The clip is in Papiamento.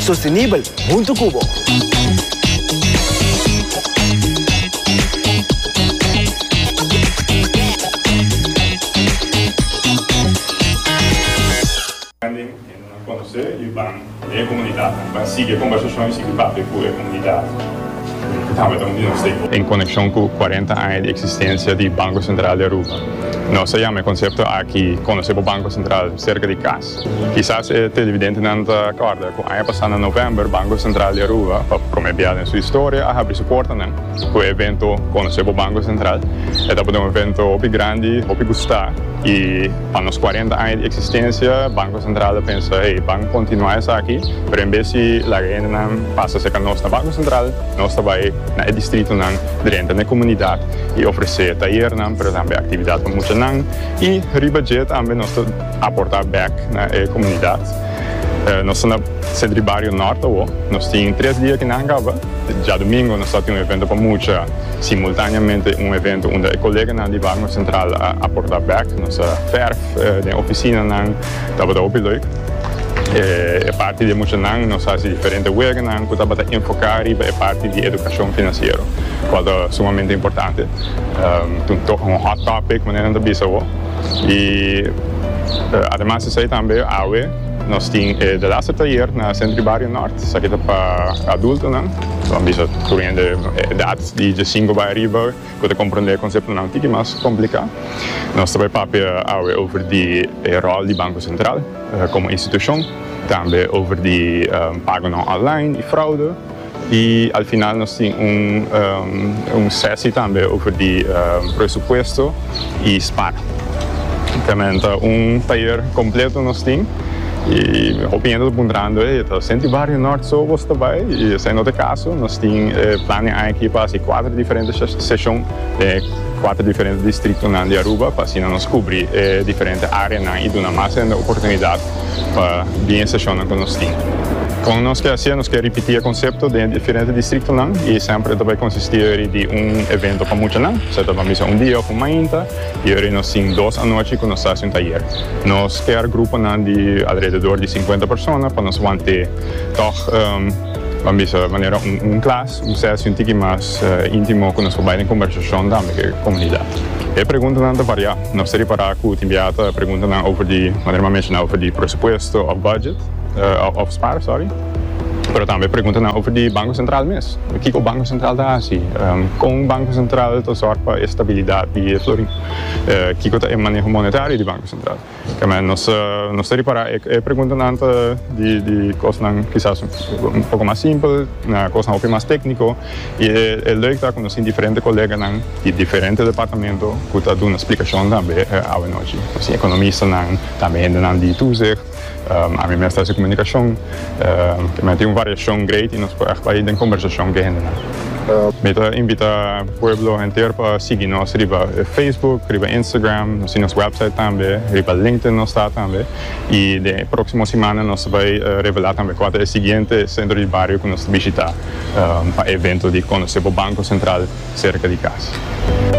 Sostenibel huntu cu bo. En coneccion cu cuarenta aña di existencia di Banco Central di Aruba, nos a yama e concepto aki Conoce bo Banco Central cerca di casa. Kisas e televidentenan ta kòrda ku aña pasá na novèmber Banko Sentral di Aruba pa promé biaha den su historia a habri su portanan ku e evento konosé bo Banko Sentral. E tabata un evento hopi grandi, hopi gustá i pa nos kuarenta aña di eksistensia Banko Sentral a pensa hey ban kontinuá esaki pero en bes di laga hendenan pasa serka nos na Banko Sentral nos ta bai na e distritonan drenta na e komunidat i ofresé tayernan pero tambe aktividat pa muchanan i riba dje tambe nos ta Aporta bek na e komunidat. Nos ta na Sentri Bario Nort awo. Nos tin tres dia kinan kaba. Djadumingo nos ta tin un evento pa mucha, simultaneamente un evento unda e koleganan di Barrio Central a aporta bek. Nos a ferf den oficinanan, tabata hopi leuk. E parti di e muchanan nos hasi diferente weganan cu tabata enfoca riba e parti di educacion financiero, cual ta sumamente importante. Tin toch un hot topic manera nan ta bisa awo. Y ademas esey tambe awe nos tin e de laster tayer na Centro y Barrio Nort, esaki ta pa adultonan, lo han bisa tur hende edad di diesinco bay ariba cu ta comprende e conceptonan un tiki mas complica. Nos ta bay papia awe over di e rol di Banco Central como institucion, tambe over di pagonan online y fraude. Y al final nos tin un sesi tambe over di presupuesto y Spar. Realmente un tayer completo nos tin y hopi hende ta puntrando, hey, ta senti Barrio Nort so bos ta bay? Y esai no ta e caso, nos tin e plan den aña aki pa haci cuater diferente seshon den e cuater diferente distritonan di Aruba pa asina nos cubri e diferente areanan y duna mas hende oportunidad. pa bien e seshonnan ku nos tin. Kon nos ke hasié? Nos ke ripití e konsepto den e diferente distriktonan i semper e ta bai konsistí yori di un evento pa muchanan, kusé ta ban bisa un dia òf un mainta, i yori nos tin dos anochi ku nos ta hasi un tayer. Nos kear gruponan di alrededor di sinkuenta persona pa nos want'é tòg ban bisa manera un klas, un sesi un tiki mas íntimo ku nos por bai den kombersashon tambe ku e komunidat. E preguntanan ta variá. Nos ta repará ku tin biaha ta pregunta nan over di, manera mi a menshoná, over di presupuesto òf bùdjet, òf spar, sòri, pero tambe pregunta nan over di Banko Sentral mes. Kiko Banko Sentral ta hasi? Kon Banko Sentral ta sòrg pa e stabilidat di e florin? Kiko ta e maneho monetario di Banko Sentral? Kèmen, nos ta repará e preguntanan ta di kosnan kisas un poko mas simpel na kosnan hopi mas tékniko i e lèuk ta ku nos tin diferente koleganan, Di diferente departamento cu ta duna splicashon tambe awanochi. Nos economistanan, tambe hendenan di toezicht, ami mes ta hasi comunicashon. Mi a tin un variashon great y nos por echt bai den combershashon cu e hendenan. Mi ta invita pueblo henter pa sigui nos riba Facebook, riba Instagram, nos tin nos website tambe, riba LinkedIn nos ta tambe. Y den e proximo simana nos ta bai revela tambe cua ta e siguiente centro di bario cu nos ta bishita. pa evento di conoce bo Banco Central cerca di cas.